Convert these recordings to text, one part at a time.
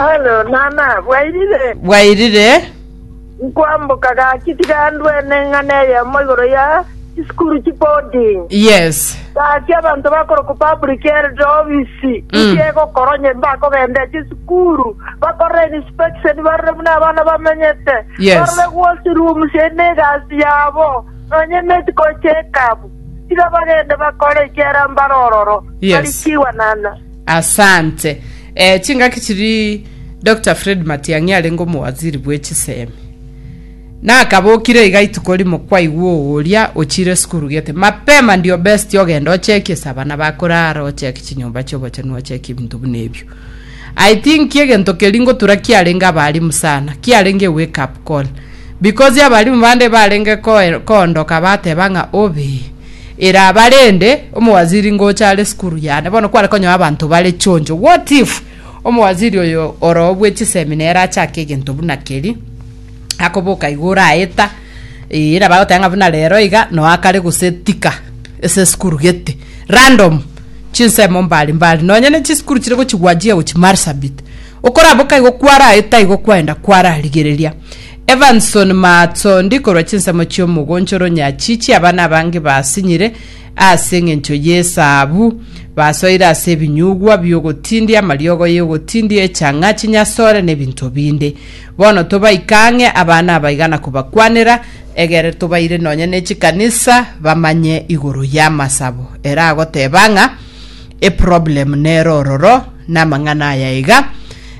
Alo, nana, bwairire? Bwairire. Nkwamboka gaki tiga ndue neng'ana eyemo igoro ya chisukuru chiboarding. Yes. Gaki abanto bakorokwa public health office inki egokora onye mbakogenda chisukuru bakorere inspection barore buna abana bamenyete Yes. barore washroom sie ne egasi yabo nonye medical check up tiga bagende bakore ekiara mbare ororo Yes. barikiwa nana Asante. Ee, chingaki chiri Doctor Fred Matiang'i arenge omowaziri bwe chisemi. Nakabokire iga ituko rimo kwaigwa ogoria ochire esukuru gete, mapema ndio best ogende ocheki ase abana bakorara, ocheki chinyomba chiobochenu, ocheki ebinto buna ebio. I think egento keri ngotura kiarenge abarimu sana, kiarenge wake up call. Because abarimu bande barenge koe- koondoka bateba ng'a obe, Eraba rende omowaziri ngocha are sukuru yane, bono kware konyoa abanto bare chonjo. What if omowaziri oyo oroo bwe chisemi nere achake egento buna keri, akoboka igo oraeta, eh, eraba agoteba ng'a buna rero iga noa kare gose tika ase sukuru gete. Random, chinsemo mbari mbari, nonye ne chisukuru chire gochigwa achiga gochia Marsabit. Okoraboka igo kwaraeta igo kwaenda kwararigereria. Evanson Maatondi korwa chinsemo chi'omogoncho o Ronyachi chi'abana abange basinyire ase engencho y'esabu. Basoire ase ebinyugwa bi'ogotindia, amariogo y'ogotindia, echang'a, chinyasore, na ebinto binde. Bono tobaika ang'e abana abaiga na kobakwanera, egere tobaire nonya ne chikanisa bamanye igoro y'amasabo. Ere agoteba ng'a eproblem nere ororo namang'ana aya iga,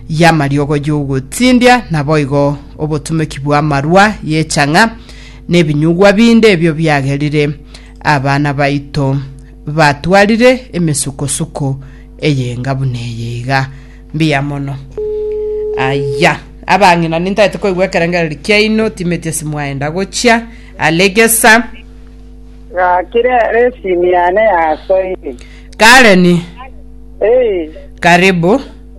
y'amariogo y'ogotindia, naboigo obotumeki bw'amarwa y'echang'a, nebinyugwa binde ebio biagerire abana baito batwarire emesukosuko eyenga buna eye iga. Mbuya mono. Aya, abang'ina nintaete koigwa ekerengereri kiaino, timeti ase mwaenda gochia, alegesa. Gakire ere esimi yane yasoire. Karen, Ee, karibu.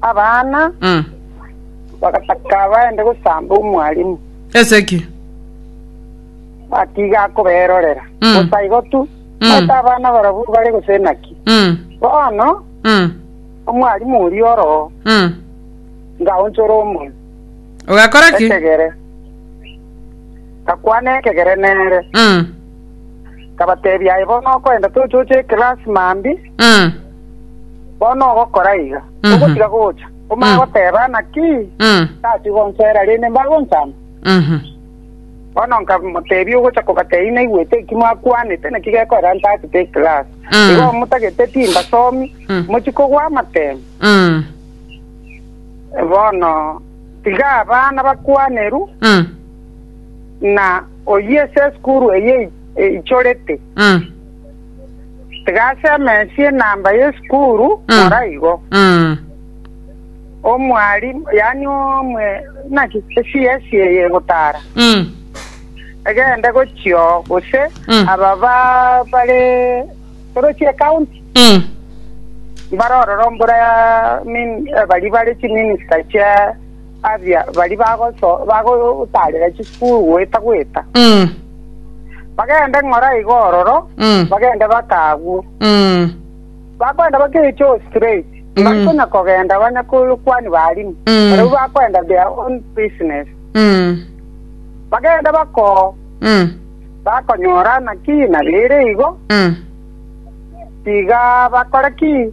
Abana Mm. bagataka baende gosamba omwalimu, Ase ki? batiga akoberorera. Mm. Gosa igo tu, Mm. maete abana barabwo bare gose naki. Mm. Bono Mm. omwalimu oria oro Mm. ngaonchora omoyo Ogakora ki? ekegere, gakwana ekegere nere, Mm. kabatebia aye bono okoenda tochoche ekelasi mambi Mm. Bono ogokora iga, Mhm. ogotiga gocha, omanye Mm. goteba, Naki Mm. tachia gonsoera, rende mbagonchama. Mhm. Bono nkamotebia, Ogocha kobatebia naigwete eki mwakwanete, naki gekorera ntachete eklasi. Mm. Igo motagete timbasomi, Mm. mochia kogwa amatemo. Mm. Bono tiga abana bakwaneru, Mm. na oyio ase esukuru eye eichorete, Mm. Tiga ase emensi enamba y'esukuru Mm. kora igo. Mm. Omwalimu, yaani omwe, naki CS eye egotara. Mm. Egende gochio gose Mm. aba ba- bare torochi ekaunti Mm. barorora ombora ya min- eh, bari bare chiminista chia Aria baria bagotaarera chisukuru goeta-goeta, bagende ng'ora igo ororo, bagende bake agwo. Bakoenda bake gochia oo straight, mbari konya kogenda abanyakwani b'aarimu, barabwo bakoenda their own business. Bagende bake oo, bakonyora naki nabeire igo, tiga bakore ki?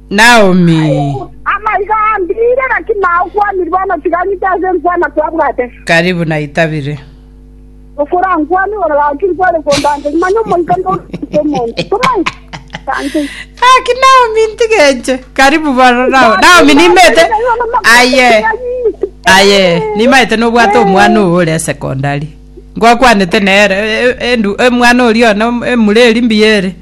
Naomi. Amaiga ambire, gaki nao kwanire bono tiga ng'ite ase nkwana kwabwate. Karibu naitabire. Okora nkwane igoro gaki nkware kondanteri, manya omoika ndoruta omonto. Tomaete. Tante. Aki Naomi ntigenche. Karibu bono nao. Naomi nimete. Aye. Aye, nimaete nobwate omwana owo ore secondary. Ngwakwanete nere e- e- endu- omwana oria one emureri mbiyere.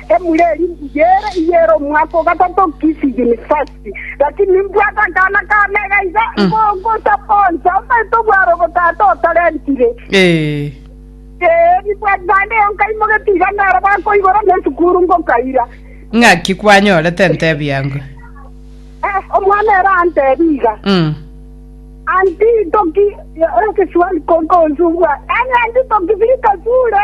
Emura eria mbuya ere iga ere omwaka o gatato Kisi University, gaki nimbwate akana ka mega iga ngo- ngosaponsa omanyete obware obotata otarentire. Eh. Ee, nibwate naende eyo nkaimogetie iga nero bakoibora na esukuru ngokaira. Ng'aki kwanyorete ntebi yango? Eh, omwana ere antebi iga Mm. anti toki ekeswali kokonzubwa ene anti toki bikasure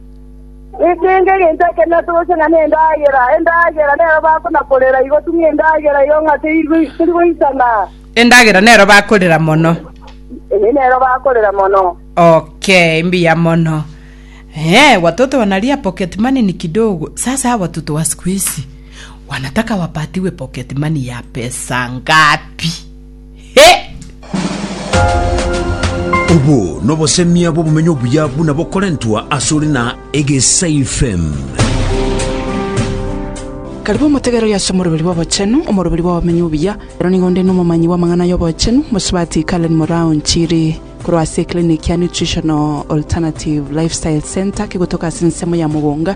Ekeene, egento ekio nase gochia ng'a nendagera, endagera nero bakonakorera, igotung'a endagera eye ng'a teri- terigoisana. Endagera nero bakorera mono. Eye nero bakorera mono. Okay, mbuya mono. Eh, watoto wanalia pocket money ni kidogo. Sasa hawa watoto wa siku hizi wanataka wapatiwe pocket money ya pesa ngapi? Obo nobosemia bw'obomenyo obuya buna bokorentwa asore na Egesaifem. Karibu omotegereri ase omoroberi bw'obochenu, omoroberi bw'obomenyo obuya. Ero nigo onde nomomanyi bw'amang'ana y'obochenu, mosubati Karen Moraa Onchiri, korwa ase eklinik ya Nutritional Alternative Lifestyle Centre kegotoka ase ensemo ya Mugunga,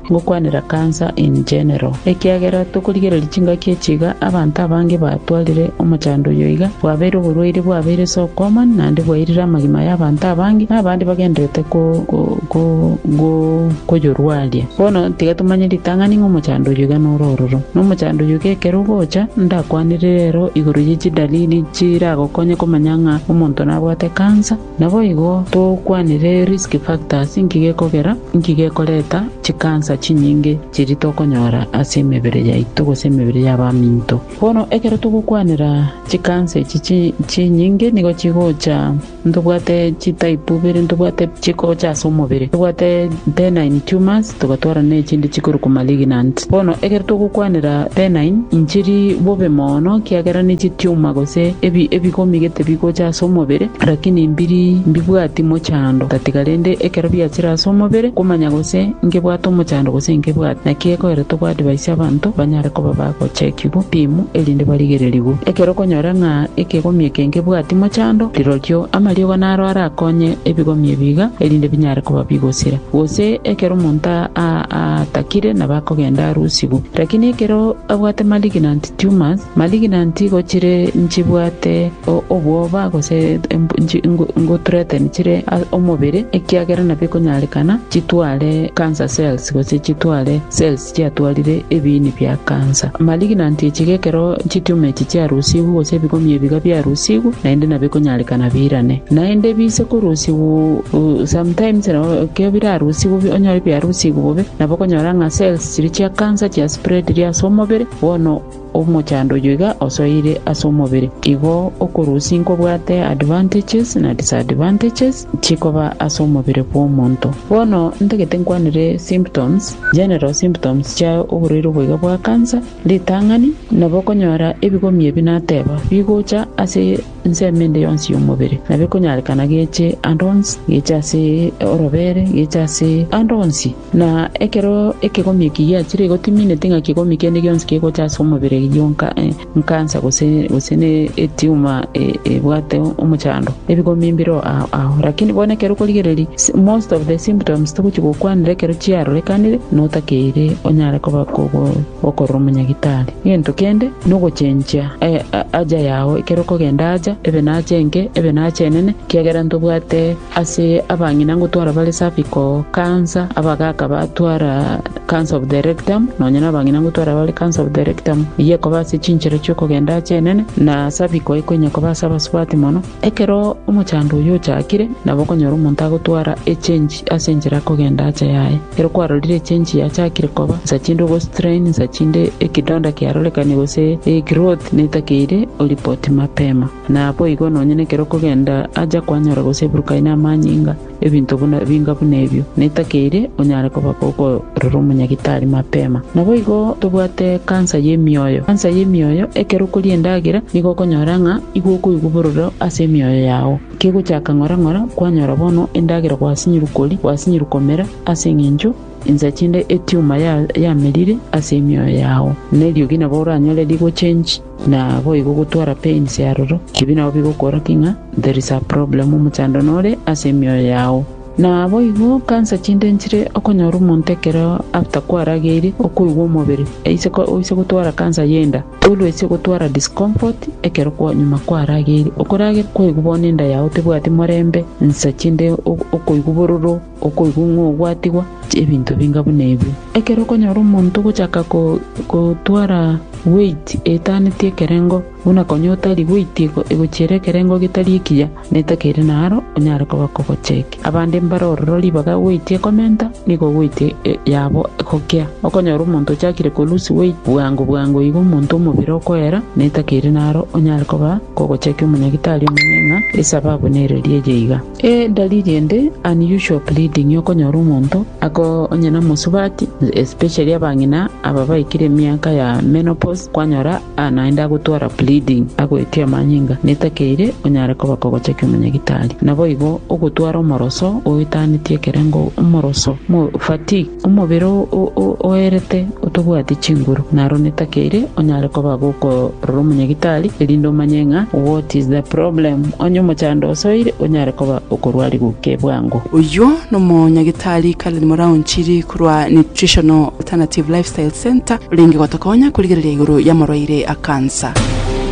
Ngokwanera cancer in general, ekiagera tokorigereria chingaki echi iga abanto abange batwarire omochando oyo iga, bwabeire oborwaire bwabeire ase okwama naende bwairire amagima y'abanto abange, na abande bagendererete koyorwaria. Bono tiga tomanye ritang'ani ng'a omochando oyo iga nore ororo, na omochando oyo iga ekero ogocha, ndakwanere rero igoro ye chidalili chiragokonye komanya ng'a omonto nabwate cancer. Naboigo togokwanera risk factors, inki gekogera, inki gekoreta chikansa chinyinge chiria tokonyora ase emebere yaito gose emebere y'abaminto. Bono ekero togokwanera chikansa echi chinyinge nigo chigocha, ntobwate chitype ibere, ntobwate chikocha ase omobere, ntobwate benign tumors, Togatwara nechindi chikorokwa malignant. Bono ekero togokwanera benign inchiri bobe mono, kiagera nechitiuma gose ebi ebigomi gete bigocha ase omobere, rakini mbiri mbibwati mochando tatiga rende ekero biachire ase omobere, komanya gose ngebwate omochando gose inkebwati. Naki ekoera togo advise abanto banyare koba bagochekigwa rimu erinde barigererigwe. Ekero okonyora ng'a ekegomi eke nkebwati mochando, rirorio amariogo naro arakonye ebigomi ebi iga erinde binyare koba bigosira. Gose ekero omonto aatakire nabo akogenda arusigwe. Lakini ekero abwate malignant tumors, malignant igo chire nchibwate obwoba gose nko threaten chire omobere ekiagera nabo ekonyarekana chitware cancer cells gose chitware cells. chiatwarire ebiini bia kansa. Malignant echiga ekero chitumor echi chiarusigwe gose ebigomio ebiga biarusigwe naende nabikonyarekana birane. Naende biise korusigwe sometimes nabo ekero birarusigwe bi- onyore biarusigwe bobe nabo okonyora ng'a cells chiria chia kansa chiaspreadire ase omobere bono Omochando oyo iga osoeire ase omobere, igo okorusia nkobwate advantages na disadvantages chikoba ase omobere bw'omonto. Bono ntagete nkwanere symptoms, general symptoms chia oborwaire obo iga bwa cancer, ritang'ani, nabo okonyora ebigomi ebi nateba bigocha ase. Ensemo ende yonsi y'omobere nabo ekonyarekana geche ande onsi, geche ase orobere, geche ase ande onsi. Na ekero ekegomio eki giachire, gotimineti ng'a kegomio kende gionsi kegocha ase omobere gionka, enkansa gose gose ne etiuma ebwate omochando, ebigomio mbireo ao. Lakini bono ekero okorigereria, most of the symptoms togochi gokwanera ekero chiarorekanire na otakeire onyare koba okorora omonyagitari. Egento kende nogochenchia Aja yao ekero okogenda aja, ebe nache enke, ebe nache enene, ekiagera ntobwate ase abang'ina ngotwara bare safi ko cancer, abagaaka batwara cancer of the rectum, nonya na abang'ina ngotwara bare cancer of the rectum, eyio ekoba ase chinchera chi'okogenda ache enene, na cervical ekonya koba ase abasubati mono. Ekero omochando oyio ochakire, nabo okonyora omonto agotwara echenchi ase enchera akogenda aacha yaye. Ekero kwarorire echenchi yachakire koba, nsa chinde obo strain, nsa chinde ekidonda kiarorekane gose egrowth netakeire oripoti mapema. Naboigo nonye nekero okogenda aacha kwanyora gose eburukaine amanyinga, Ebinto buna ebinga buna ebio, netakeire onyare koba kokorera omonyagitari mapema. Naboigo tobwate kansa y'emioyo. Kansa y'emioyo, ekero okoria endagera, nigo okonyora ng'a igo okoigwa bororo ase emioyo yao. Kegochaka ng'ora ng'ora, kwanyora bono endagera gwasinyiru koria, gwasinyiru komera, ase eng'encho insa chinde etumor ya yamerire ase emioyo yao. Neriogi nabo oranyore rigochengi. Naboigo gotwara pains aroro, ebi nabo bigokora ki ng'a there is a problem omochando nore ase emioyo yao. Naboigo cancer chinde nchire okonyora omonto ekero after kwarageire okoigwa omobere aise oise gotwara cancer y'enda, always ogotwara discomfort ekero kwa nyuma kwarageire, okorageria kwaigwa bono enda yao tebwati morembe, nsa chinde okoigwa bororo. Okoigwa ng'a ogwatigwa ebinto binga buna ebi. Ekero okonyora omonto ogochaka gotwara weiti etaaneti ekerengo, buna konya otari weiti egochiera ekerengo getari ekiya, meta keria naaro onyare koba kogocheki. Abande mbare ororo ribaga weiti ekomenta, nigo weiti yabo egokea. Okonyora omonto ochakire korusia weiti, bwango bwango igo omonto omobere okoera, meta keria naaro onyare koba kogocheki omonyagitari omonene ng'a esababu nere eri eye iga. Edalili ende, unusual bleeding, y'okonyora omonto onye nomosubati, especially abang'ina aba baikire emiaka ya menopause, kwanyora naende agotwara bleeding agoetia amanyinga netakeire onyare koba kogochakia omonyagitari. Naboigo ogotwara omoroso oetanetie ekerengo, omoroso, fatigue. Omobere oerete otobwati chinguru, naro netake ere onyare koba gokorora omonyagitari, erinde omanye ng'a what is the problem. Onye omochando osoire, onyare koba okorwarigwa ki bwango. Oyio nomonyagitari Karen Moraonchiri korwa Nutritional Alternative Lifestyle Centre orenge gotokonya korigereria igoro y'amorwaire a cancer.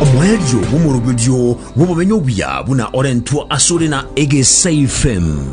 Omoerio bw'omoroberio bw'obomenyo obuya buna orentwe asore na Egesaifem.